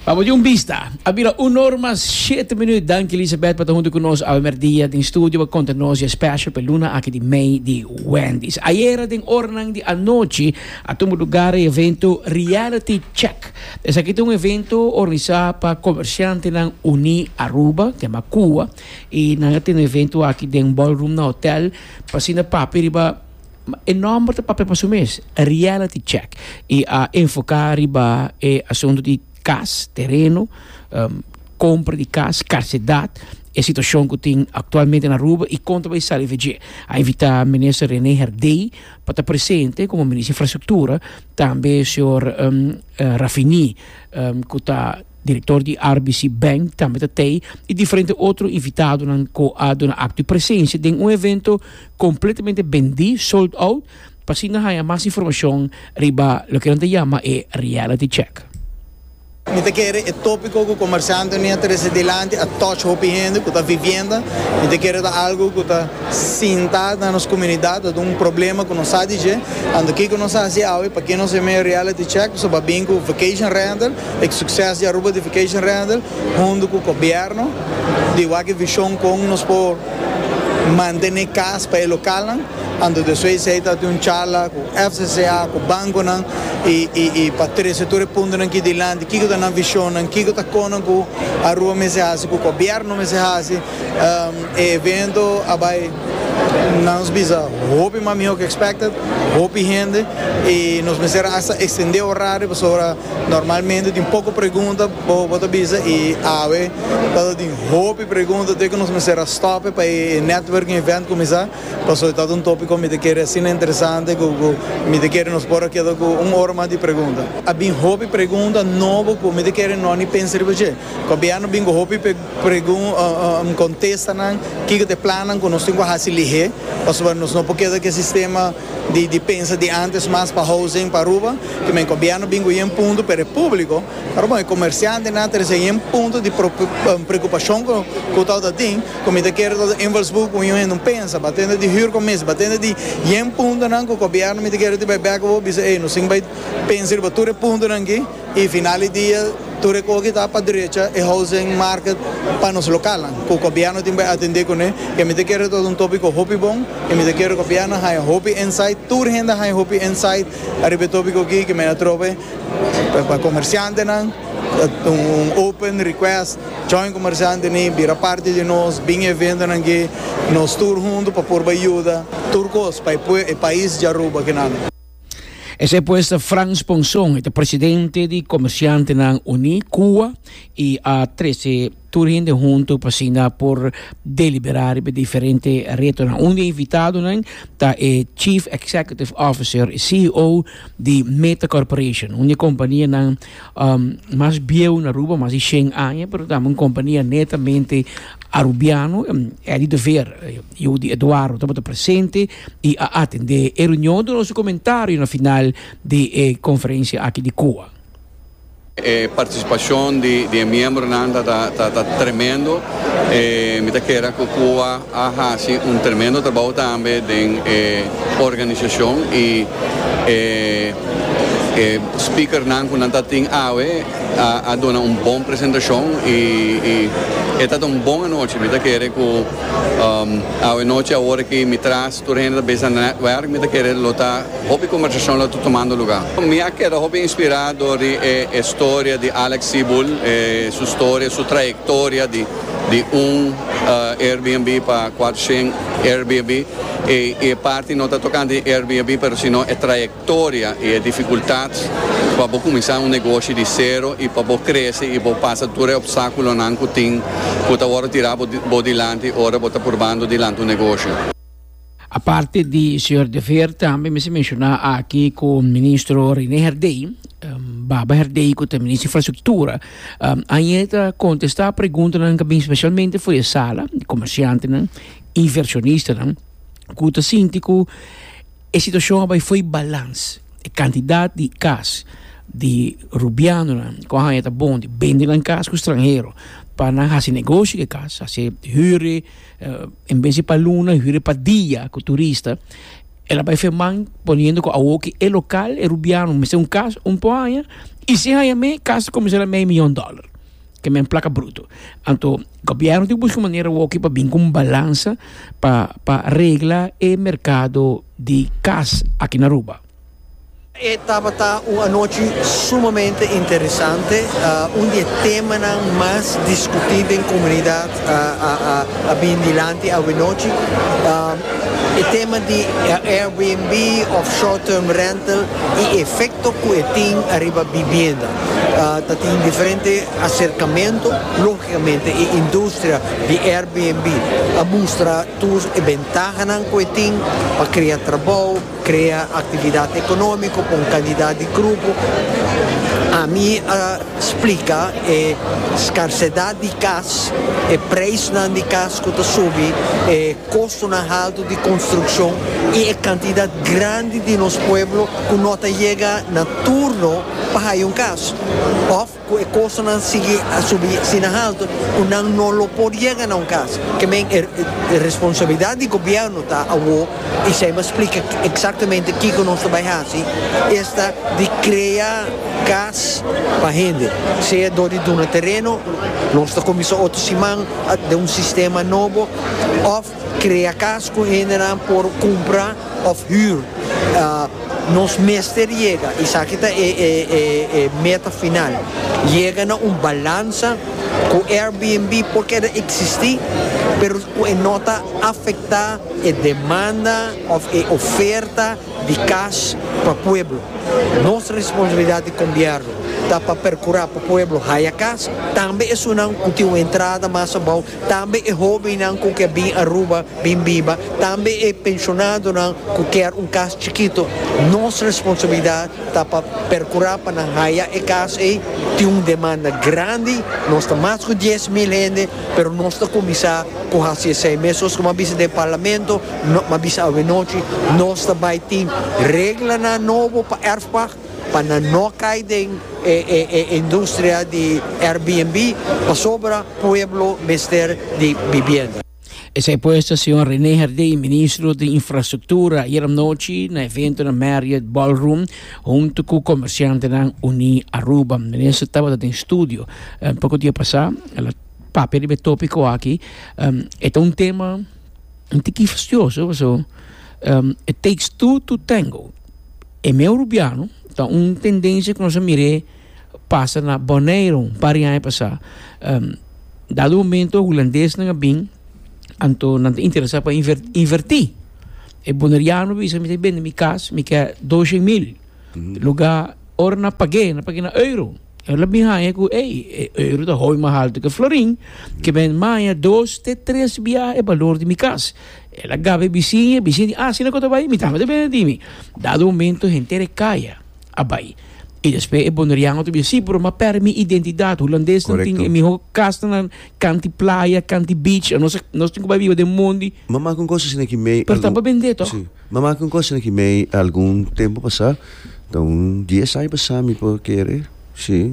Pa bo di un bista. A bira un or mas shete minuut. Danki Elisabeth pa ta hunto cu nos awe merdia den studio pa conta nos dje special pa e luna aki di mei di Wendy's. Ayera den oranan di anochi. A tumba lugar e evento Reality Check. Esaki ta un evento organisá pa komershantenan uní Aruba, tema Cuba, i nan a tene evento aki den ballroom na hotel pa asina papia riba, e nòmber ta papia pa su mes, Reality Check, i a enfoká riba e asuntu di kas, tereno, kompra di kas, karsedat, e situashon ku tin aktualmente na Aruba i kon ta bai sali dje. A invitá Minister René Herdé, pa ta presente komo Minister Infrastruktura, tambe señor Rafini ku ta direktor di RBC Bank tambe ta tei i diferente otro invitadonan ku a duna akto di presensia den un evento kompletamente bendí, sold out, pa asina haña mas informashon riba loke nan ta yama e reality check. Mi ta kere e tópiko ku komersiantenan a trese dilanti a tòch hopi hende ku ta vivienda. Mi ta kere ta algu ku ta sinta na nos komunidat, ta un problema ku nos sa di dje. Anto kiko nos a hasi awe? Pakiko nos a mea reality check? Nos a ba bin ku vacation rental, e sukses di Aruba di vacation rental, huntu ku gobièrnu di wak e vishon kon nos por mantene kas pa e lokalnan. Anto di esei, esei ta tin un charla ku FCCA, ku bankonan i pa trese tur e puntonan aki dilanti, kiko ta nan vishonnan, kiko ta konan ku Aruba mester hasi, ku gobièrnu mester hasi. E evento a bai, nan nos bisa, hopi mas mihó ku expected, hopi hende i nos mester hasta ekstendé orario pasobra normalmente tin poko pregunta, bo ta bisa i awe tabata tin hopi pregunta, te ku nos mester a stòp pa e networking event kuminsá. Pasobra ta un tópiko mi ta kere asina interesante ku mi ta kere nos por a keda ku un ora mas di pregunta. A bin hopi pregunta nobo ku mi ta kere no ni pensa riba dje. Gobièrnu bin ku hopi pregunta kontesta nan kiko ta e plannan ku nos tin ku hasi lihé pasobra nos no por keda ku e sistema di pensa di ántes mas pa housing pa Aruba. Gobièrnu bin ku yen punto pero e públiko Pero bon, e comerciantenan ta recibe un punto di preocupacion cu ta ota tin, cu mi ta kere ta ota invalsburgo cu un hende un pensa, ba tende di hür comisie, ba tende di yen puntonan cu gobierno mi ta kere tin bai bek cu bo bisa, ey, nos tin bai pensa riba tur e puntonan aki y final di dia tur e cosa aki ta pa drecha e housing market pa nos localnan cu gobierno tin bai atende cune, y mi ta kere ta ota un topico hopi bon y mi ta kere gobierno haya hopi insight, tur hende haya hopi insight riba e topico aki cu mi a trobe. Pa comerciantenan ta un open request, join comerciante ni bira parti di nos, bin e eventonan aki, nos tur hunto pa por bai yuda tur cos pa e pais di Aruba kinan. Esey pues ta Frans Ponson, e ta presidente di Comerciantenan Uní, Cuba, y a trece. Tur hende huntu pa asina por deliberá riba e diferente retonan. Un di e invitadonan ta e Chief Executive Officer, e CEO, di Meta Corporation, un di e kompanianan mas bieu na Aruba, mas di shen aña, pero tambe un kompania netamente arubiano, Eddie de Veer. Yu di Eduardo tabata presente i a atendé e reunion. Duna nos su komentario na final di e konferensia aki di Cuba. E participacion di e miembronan ta tremendo. Mi ta kera cu Cuba a haci un tremendo trabou tambe den e organisacion y e speakernan cu nan ta tin awe a duna un bon presentacion y e ta un bon anochi. Mi ta kere cu awe nochi awor aki mi tras tur hende ta bisa netwerk, mi ta kere lo ta. Hopi conversacion lo ta tumando luga. Mi a keda hopi inspira dor di e historia di Alex Seabull, e su historia, su trayectoria di di un Airbnb pa cuater shen Airbnb y e parti no ta tocando di Airbnb pero sino e trayectoria y e dificultad pa bo cuminsa un negoshi di cero y pa bo crece y bo pasa tur e obstaculonan cu tin cu ta worde tira bo dilanti ora bo ta purbando dilanti un negoshi. Aparte di señor De Veer tambe mester menciona aki cu Ministro Rene Herdey, Baba Herdey cu ta Ministro Infrastructura, aña ta contesta preguntanan ca bin specialmente for e sala, comerciantenan, inversionistanan cu ta sinti cu e situacion a bay fo'i balans. E cantidad di cas di Rubianonan cu aña ta bon di bende nan cas cu stranhero pa nan haci negoshi cu e cas, haci hüre. En bes di pa luna hüri e pa dia ku turista. El a bai firman poniendo ku awoki e lokal e rubiano mester un kas un por haña i sin haña me kas ta kuminsá na mei mion dòler, ke men plaka bruto. Anto gobièrnu tin ku buska un manera awoki pa bin ku un balansa pa pa regla e merkado di kas aki na Aruba. E tabata un anochi sumamente interesante. Un di e temanan mas discutí den comunidad a bini dilanti awenochi. E tema di Airbnb of short term rental y e efecto cu e tin ariba bibienda. Ta tin diferente acercamento. Logicamente e industria di Airbnb a mustra tur e bentahanan cu e tin pa crea trabao, Crea actividad economico pa un cantidad di grupo. Ami a splica e scarcedad di cas, e prijsnan di cas cu ta subi, e costonan halto di construccion y e cantidad grandi di nos pueblo cu no ta yega na turno pa haya un cas. Of. Cu e costonan sigui a subi asina halto cu nan no lo por yega na un cas. Ke men e responsabilidad di gobierno ta awo y si a m'a splica exactamente kico nos ta bay haci esta di crea cas pa hende, sea door di duna tereno, nos ta cuminsa otro siman den un sistema nobo of Krea kas ku hendenan por kumpra òf hür. Nos mester yega, esaki ta e meta final, yega na un balansa ku Airbnb por keda eksistí pero ku e no ta afektá e demanda òf e oferta di kas pa pueblo. Nos responsabilidat di Gobièrnu ta pa perkurá pa pueblo haya kas, tambe esunnan ku tin un entrada mas abou Tambe e hóbennan ku ke bin Aruba bin biba, tambe e penshonadonan ku kier un kas chikito, nos responsabilidat ta pa perkurá pa nan haya e kas ei. Tin un demanda grandi, nos ta mas ku dies mil hende, pero nos ta kuminsá ku hasi esei mes. Sos kuma bisa den Parlamento, kuma bisa awe nochi, nos ta bai tin reglanan nobo pa Erfpach. Pa nan no cay den e e e industria di Airbnb pasobra pueblo mester di bibienda. Esey pues ta señor Rene Herdey, Ministro di Infrastructura, ayeranochi na evento na Marriott Ballroom hunto cu comerciantenan uní Aruba. Minister tabata den studio poco dia pasá, el a papia riba e topico aki. E ta un tema un tiki fastioso pasobra it takes two to tango. E meu rubiano ta un tendensia ku nos a mir'é pasa na Boneiru un par di aña pasá. Dado momento hulandesnan a bin anto nan ta interesá pa invertí. E boneriano a bisa mi mi ta bende mi kas mi ke dos shen mil lugá ora nan pag'é nan pag'é na euro. El a bin haña ku ey e euro ta hopi mas altu ke florin, ke men maña dos te tres biaha e balor di mi kas. El a gaba e bisiña, e bisiña di, Asina ku ta bai? Mi tambe ta bini di mi. Dado momento henter e kaya a bai. I despues e Boneriano ta bisa, Si, pero m'a pèrdè mi identidat. Hulandesnan tin e mihó kastanan kant di playa, kant di beach. Nos tin ku bai biba den mondi. M'a maak un kos asina ki mei. Pero tambe bend'é tòg. M'a maka un cosa aki mei algun tempo pasá, ta un dies aña pasá mi por kere, sí,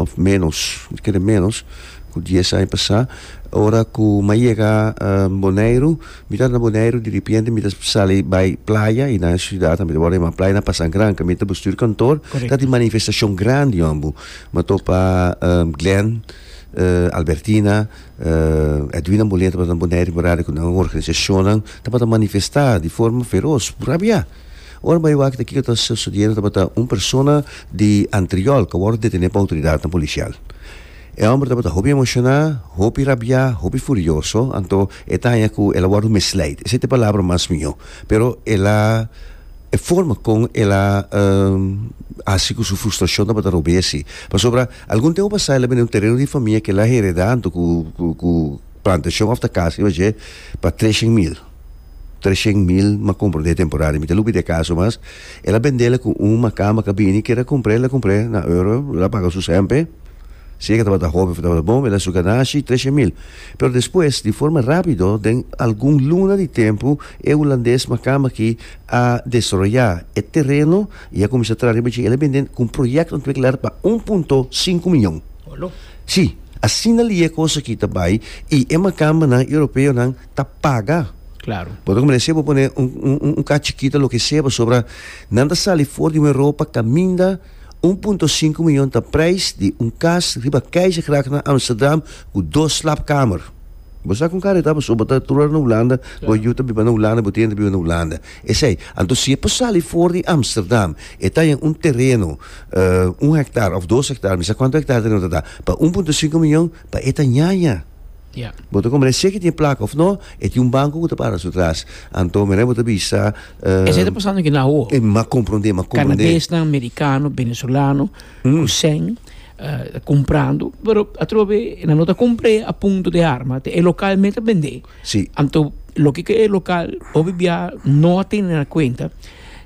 òf ménos, mi ta kere ménos ku dies aña pasá. Ora ku m'a yega Boneiru, mi tabata na Boneiru diripiente mi ta sali bai playa i nan e siudat a mi ta wòrdu yamá playa na Pasa Granca, mi ta busca tur kantor, ta tin manifestashon grandi yòmbu. M'a topa Glen. Albertina, Edwina Molina tabata na Bonaire ku Barada ku nan organisashonnan tabata manifestá di forma feros ku rabiá. Ora bai wak ta kiko ta sosodiendo tabata un persona di Antriolk a wòrdu detené pa outoridatnan polisial. E hòmber tabata hopi emoshoná, hopi rabiá, hopi furioso, anto e ta haña ku el a wòrdu misleid, esei ta e palabra mas mihó, pero el a e forma kon el a hasi ku su frustrashon tabata rob'e asi, pasobra. Algun tempu pasá el a bini un tereno di famia k'el a heredá hantu ku plantashon òf ta kas riba dje pa treshen mil. Treshen mil m'a kumpra den e temporada i mi ta lubri di e kas nomas. El a bend'é la ku un makamba k'a bini kere a kumpr'é, el a kumpr'é na euro, el a paga su sèmpe, si e ke tabata hopi òf tabata bon, el a suka nashi, treshen mil. Pero despues, di forma rápido, den algun luna di tempu, e hulandes makamba akí a desaroyá e tereno I a kuminsá traha riba dje e lamentin ku un proyèkto ontwikkelar pa un punto sinku mion. Sí, asina lia kosa ki ta bai i e makambanan europeonan ta paga. Bo ta kuminsá bo pone un un ka chikito loke sea pasobra nan ta sali for di un Europa kaminda un punto sinku mion ta preis di un kas riba Keizergracht na Amsterdam ku dos slapkamer. Bo sa kon kari ta pasobra bo ta trura na Hulanda, bo yu ta biba na Hulanda, bo tenta biba na Hulanda. Esei, anto si e por sali for di Amsterdam, e ta yen un tereno, un hektar òf dos hektar, mi sa kuantu hektar tereno ta ta, pa un punto sinku mion, pa e ta ñaña. Bo ta komprende, sea ki tin e plaka òf nò, e tin un banko ku ta para su tras. Anto mira, bo ta bisa, Esei ta pasando aki na awo. E m'a komprondé, m'a komprondé. Kanadesnan, Merikano, Benezolano, Kusèn, ta kumprando, pero atrobe nan no ta kumpr'é a punto di arma, te e lokal mei ta bend'é. Sí. Anto loke ke e lokal obi bia no a tene na kuenta,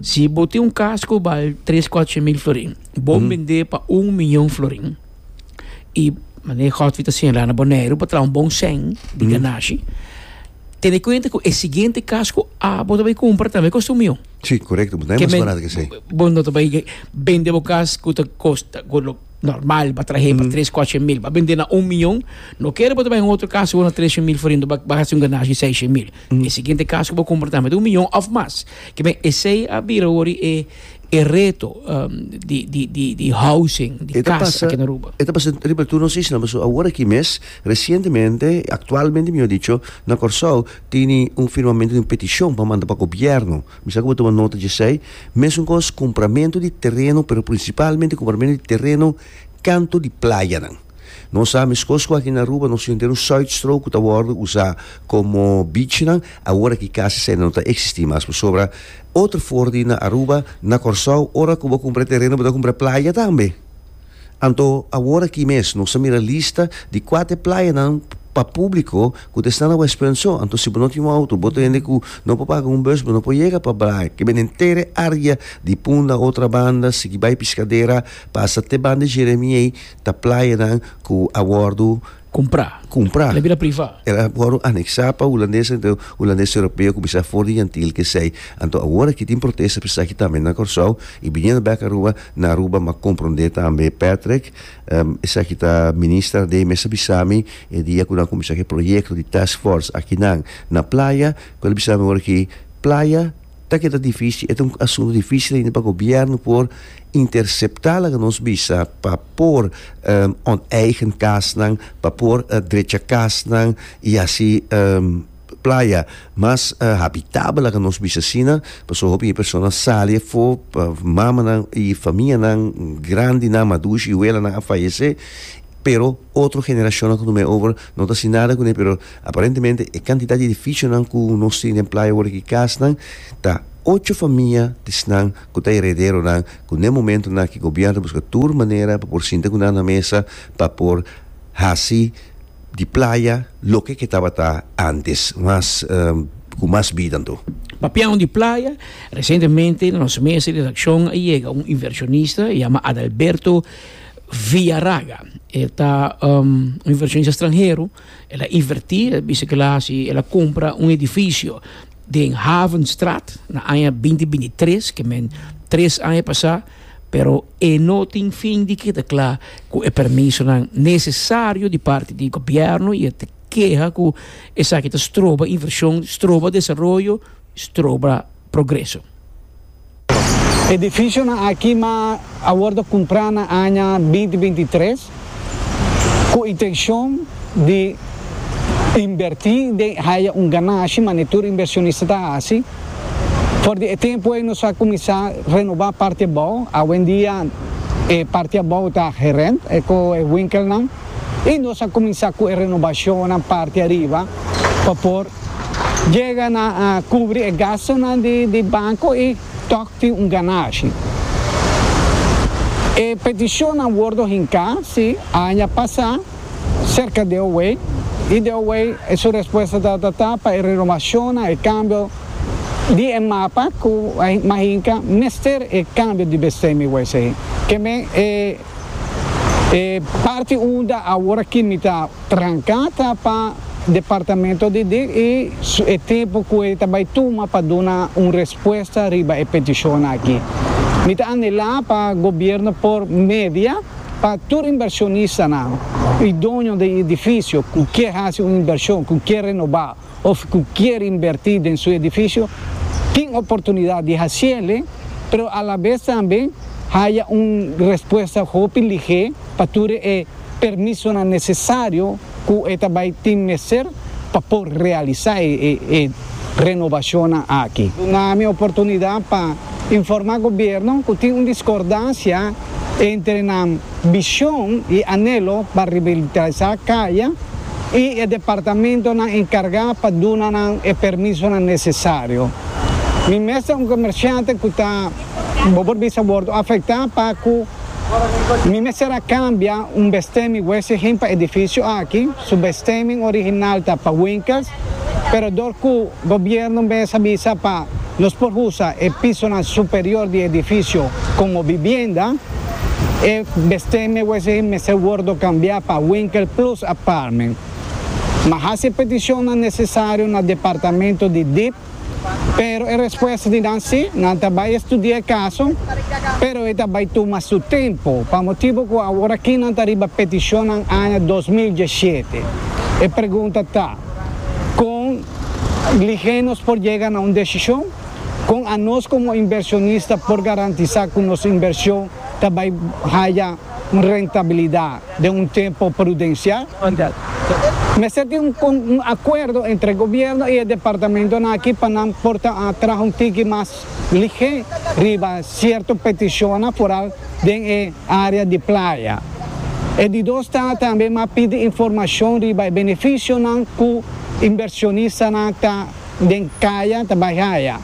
si bo tin un kas ku bal tres kuatroshent mil florin, bo bend'é pa un miyon florin i manera Godfrey ta señalá na Boneiru bo traha un bon sèn di ganashi, tene kuenta ku e siguiente kas ku a bo ta bai kumpra tambe kosta un miyon. Sí, korekto. Bo ta bai mas barat ke esei. Bo no ta bai bende bo kas ku ta kosta ku lo. normal ba trahe pa tres cuache mil ba bende na un mion no kere bo ta bai un otro casa ku na treshe mil for hintu ba ba hasi un ganashi di seishe mil e siguiente casa ku bo kumpra tambe ta un mion of mas kimen esei a bira wori e e reto di di di di housing di casa aki na Aruba. E ta pasa riba tur nos isla paso awor aki mes resientemente aktualmente mihor dicho na Kòrsou tini un firmamento di un petishon pa manda pa gobierno Mi sa ku bo tuma nota djesei. Mesunkoos kumpramentu di tereno, pero prinsipalmente kumpramentu di tereno kantu di playanan. Nos sa meskoos ku aki na Aruba nos tin entero Zuidstrook ku ta wòrdu usá komo beachnan, awor aki kasi esei no ta eksistí mas. Pasobra otro for di na Aruba, na Kòrsou, ora ku bo kumpra e tereno bo ta kumpra e playa tambe. Anto awor aki mes nos a mira lista di kuater playanan pa públiko ku ta esta na West Prince. Anto si bo no tin un outo, bo ta hende ku no por paga un bùs, bo no por yega pa Braai, ke bini entere área di Punda, Otrabanda, sigui bai Piskadera, pasa te banda Jeremie, ta playanan ku a wòrdu. Cumpra. Cumpra. El a bira priva. El a wòrdu anexá pa hulandes, anto hulandes europeo cu bisa for di yantil kesey. Anto awor aki tin protesta p'esaki tambe na Kòrsou i biniendo bèk Aruba, na Aruba m'a comprendé tambe Patrick. Esaki ta Minister Adei mester bisa mi e dia cu nan a cuminsá cu e proyecto di Task Force aki nan na playa cu el a bisa mi awor aki, Playa. Ta keda difícil, e ta un asuntu difícil ainda pa gobièrnu por interceptá laga nos bisa pa por onteigend kasnan, pa por drecha kasnan i hasi playa mas habitabel, laga nos bisa asina. Pasobra hopi persona a sali afó, mamanan i famia grandi, madushi i welanan a fayesé, pero Otro generashonnan ku no mei over no ta sin nada kuné pero aparentemente e kantidat di edifisionan ku nos tin den playa wòrdu ki kasnan ta ocho famia di esnan ku ta erederonan ku den momento na ki gobièrnu ta buska tur manera pa por sinta ku nan na mesa pa por hasi di playa loke ke tabata antes mas ku mas bida anto. Papiando di playa resientemente na nos mesa di redakshon a yega un invershonista yama Adalberto Viaraga e ta un inversionista stranhero el a inverti el bisa kila si el a kumpra un edifisio den Havenstraat na aña binti binti tres ke men tres aña pasá pero e no tin fin di kita kla ku e permisonan nesesario di parti di gobièrnu i e ta keha ku esaki ta stroba invershon stroba desaroyo stroba. progreso. Edificionan aki ma a wordo cumpra na aña binti binti tres cu intencion di inverti den haya un ganashi manera tur inversionista ta haci. For di e tempo ey nos a cuminsa renoba parti abao. Awendia e parti abao ta gerent cu e winkelnan y nos a cuminsa cu e renobacionnan parti ariba pa por. Jega na kubri e gastunan di banko i tòg tin un ganashi. E petishonnan wordo hinká, sí, aña pasá serka di Owei, i di Owei su respuesta tabata ta pa e renomashonnan, e kambio di e mapa ku mas hinka mester e kambio di bestemming wes ei. Ke men e. E parti unda awor aki mi ta tranca ta pa Departamento di di y e tempo cu e ta bay tuma pa duna un respuesta riba e peticiona aki. Mi ta anhela pa Gobierno por media pa tur inversionista nan y doño di edificio cu kier haci un inversion, cu kier renoba, of cu kier inverti den su edificio tin oportunidad di haciele, pero a la vez tambe haya un respuesta hopi ligé pa tur e permisonan necesario cu e ta bay tin mester pa por realisa e renovacionnan aki. Duna-mi oportunidad pa informa gobierno cu tin un discordancia entre nan. bishon i anelo pa ribilitalisá kaya i e departamentonan enkargá pa duna nan e permisonan nesesario. Mi mester un komersiante ku ta bo por bisa wòrdu afektá pa ku mi mester a kambia un bestemming wese hen pa edifisio aki, su bestemming original ta pa winkels, pero dor ku. Gobierno mester a bisa pa nos por usa e pisonan superior di edifisio como bibienda. E besteme a wezegi mester wordo cambia pa winkel plus apartment. M'a haci e peticionnan necesario na departamento di dip, pero e respuesta di nan si, nan ta bay estudia e caso, pero e ta bay tuma su tempo, pa motibo cu aworaki nan ta riba peticionnan aña dos mil diesisiete. E pregunta ta. Kon lihe nos por yega na un desishon? Kon anos komo inversionista por garantisá ku nos invershon ta bai haya un rentabilidat den un tempu prudensial? Mester tin un akuerdo entre gobièrnu i e departamentonan akí pa nan por ta traha un tiki mas Lihe riba sierto petishonnan foral den e area di playa. E di dos ta tambe mas pidi informashon riba e benefishonnan ku inbershonistanan ta den kaya ta bai haya.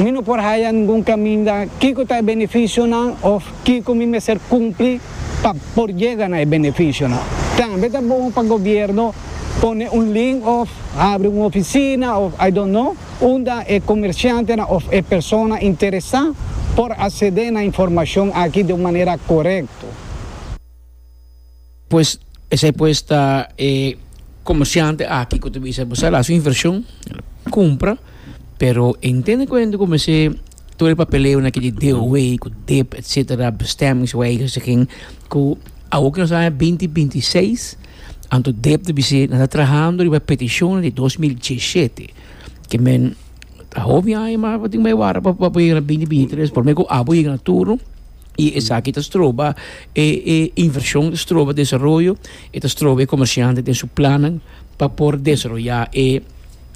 Mi no por haya ningun kaminda kiko ta e benefishonnan òf kiko mi mester kumpli pa por yega na e benefishonnan. Tambe ta bon pa gobièrnu pone un link òf habri un ofisina òf I don't know. unda e komershantenan òf e persona interesá por asedé na informashon akí den un manera korekto. Pues esei pues ta e komershante akí ku ta bisa bo sa el hasi un invershon, el kumpra, pero e intende kuento ku mester tur e papeleonan aki di DOW, ku dip etsetera, bestemmings wijziging, ku awor ku nos ta na binti binti seis. Anto Deb ta bisé nan ta trahando riba e petishonnan di dos mil diesshete ke men ta hopi aña ma bo tin mai wara pa bo yega na binti binti i tres por me ku abo yega na turno i esaki ta stroba e e invershon ta stroba desaroyo i ta stroba e komershantenan den su plannan pa por desaroyá e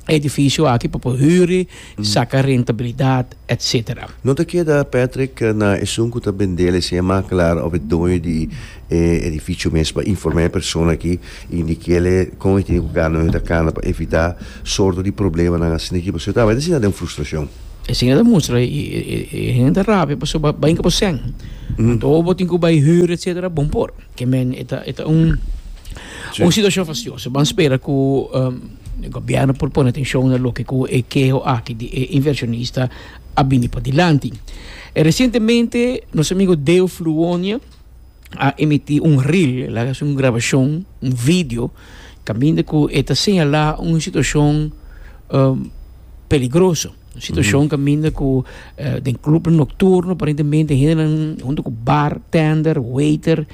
edifisio aki pa por hüri, saka rentabilidat, etc. No ta keda, Patrick, na esun ku ta bendel esei makelaar òf e doño di e edifisio mes pa informá e persona aki i di kile kon e tene ku kanda, oyon ta kanda pa evitá sorto di problemanan asina aki pasobra e tabata e siña den frustrashon. E siña ta mustra i e hende ta rabia pasobra bai kaba sèn. Anto bo tin ku bai hüri, etc. Bon por. Ke men e ta e ta un un situashon fastioso. Ban spera ku. E gobièrnu por pone atenshon na loke ku e keho aki di e invershonista a bini padilanti. Resientemente nos amigu Deo Fluonia a emití un reel, el a hasi un grabashon, un video, kaminda ku e ta señalá un situashon peligroso, un situashon kaminda ku den klubnan nokturno aparentemente hendenan huntu ku bar tender, waiter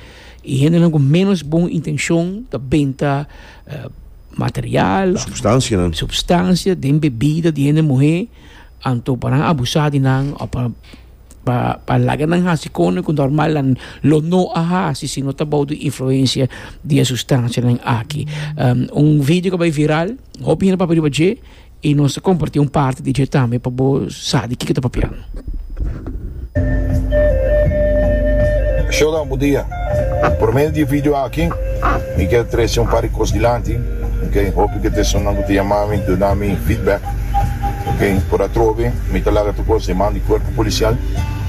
i hendenan ku ménos bon intenshon ta benta material, substancia den bebida di hende muhe anto pa nan abusa di nan o pa pa laga nan hasi kosnan ku normal nan lo no a hasi si no ta bou di influencia di e substancianan aki un video ku a bai viral hopi hende papia riba dje. Y nos ta comparti un parti di dje tambe pa bo sa di kiko ta papiando. Shodan, bu dia. Por medio di e video aki mi kier trece un par di cos dilanti, ok, hopi di e personanan cu ta yama mi duna mi feedback, ok, por atrobe mi ta laga tur cos den man di cuerpo policial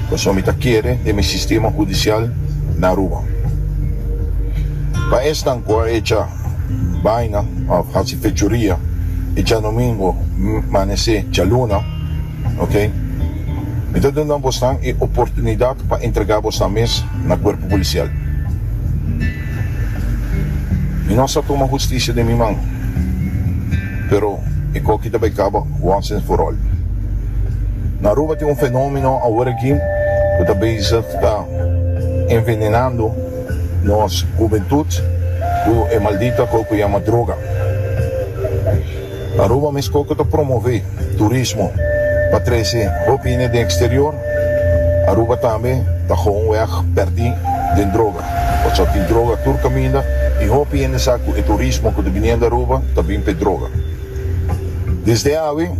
pasobra mi ta kere den mi sistema judicial na Aruba. Pa esnan cu a echa bayna of hasi. Fechoria e djanumingo manese djaluna, ok. Mi ta duna bosnan e oportunidat pa entrega bosnan mes na Cuerpo Policial. Mi no sa tuma husticia den mi man, pero e coki ta bay caba once and for all. Na Aruba tin un fenomeno awor aki cu ta bezig ta envenenando. Nos hubentut cu e maldito aco cu yama droga. Aruba mes coco ta promove turismo pa trece hopi hende den exterior, Aruba tambe ta gou un weg perdi den droga. Pasobra tin droga tur caminda y hopi hende sa cu e turismo cu ta biniendo Aruba ta bin p'e droga. Desde awe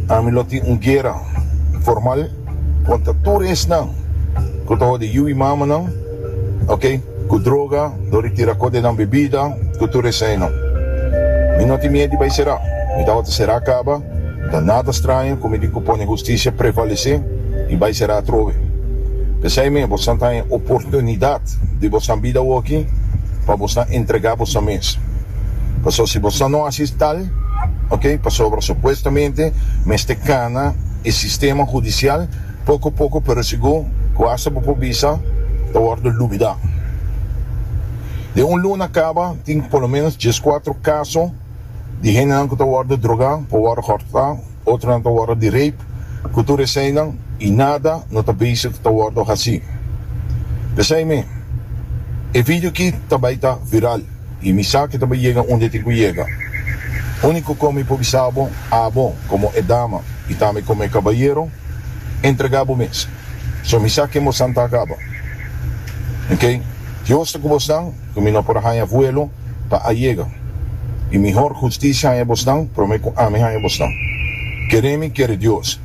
ami lo tin un guera formal. Contra tur esnan cu ta hodi yu y mamanan, ok, cu droga, lo di tira cote nan bebida, cu tur esainan. Mi no tin mied di bay cera, mi ta hoti cera caba, ta nada straño cu mi tin cu pone husticia prevalece y bay cera atrobe. Pesai me, bosnan ta haña oportunidad di bosnan bida awaki pa bosnan entrega bosnan mes. Pasobra si bosnan no haci tal, ok, pasobra supuestamente mester cana, e sistema hudisial poko poko pero sigur ku asta bo por bisa ta wòrdu lubidá. Den un luna kaba tin por lo ménos dieskuatro kaso di hendenan ku ta wòrdu drogá, por wòrdu hòrtá, otronan ta wòrdu di reip ku tur eseinan i nada no ta bezig ku ta wòrdu hasí. P'esei mi e video aki ta bai ta viral. I mi sa ke ta bai yega unda e tin ku yega. Úniko kome i por bisa bo, abo, komo e dama, i tambe komo e kabayero, entregá bo mes. So mi sa ken bosnan ta akaba. Oke, Dios ta ku bosnan, ku mi no por a haña vuelo pa a yega. I mi hor hustisia haña bosnan promé ku ami haña bosnan. Kere mi, kere Dios.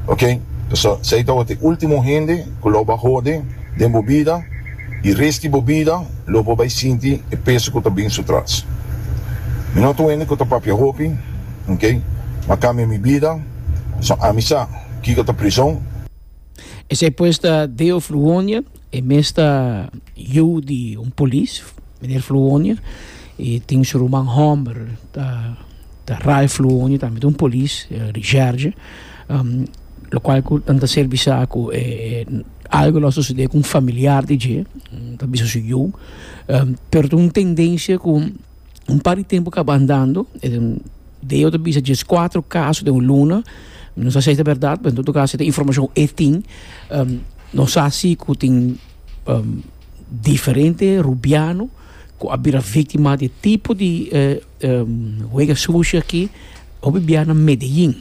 ok pasobra esei tabata e ultimo hende cu lo ba hode den bo bida y rest di bo bida lo bo bay sinti e peso cu ta bin su tras mi no ta un hende cu ta papia hopi ok ma cambia mi bida pasobra ami sa kico ta prizon. Esei pues ta Deo Fluonia, E mes ta yu di un polis, Meneer Fluonje, i tin su ruman hòmber ta Ralph Fluonje, tambe ta un polis, Richardje, lokual ku nan ta ser bisa ku e algu lo a sosodé ku un familiar di dje, nan ta bisa su yu, pero ta un tendensia ku. un par di tempu kaba andando, Deo ta bisa djes kuater kaso den un luna, no sa si esei ta berdad, pero en todo kaso esei ta informashon e tin. No sa si ku tin diferente rubiano ku a bira viktima di e tipo di huega sushi aki. Hopi bia na Medelin.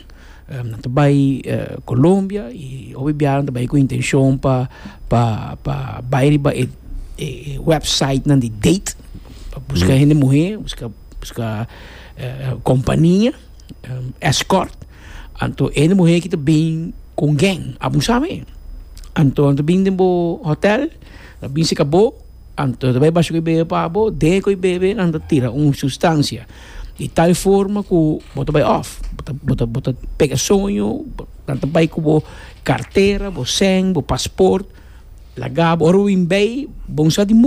Nan ta bai Colombia y hopi biaha nan ta bai cu intencion pa pa bai riba e websitenan di date pa busca hende muher, busca compania, escort. Anto e hende muher aki ta bin cu un gang, abusa me. Anto nan ta bin den bo hotel, nan ta bin cerca bo. Anto ta bay basho cu e bebe pa bo, dehe cu e bebe nan ta tira un sustancia di tal forma cu bo ta bay off, bo ta bo ta pega soño, nan ta bay cu bo cartera, bo cen, bo pasport, laga bo, ora bo bin bay bo un sa di.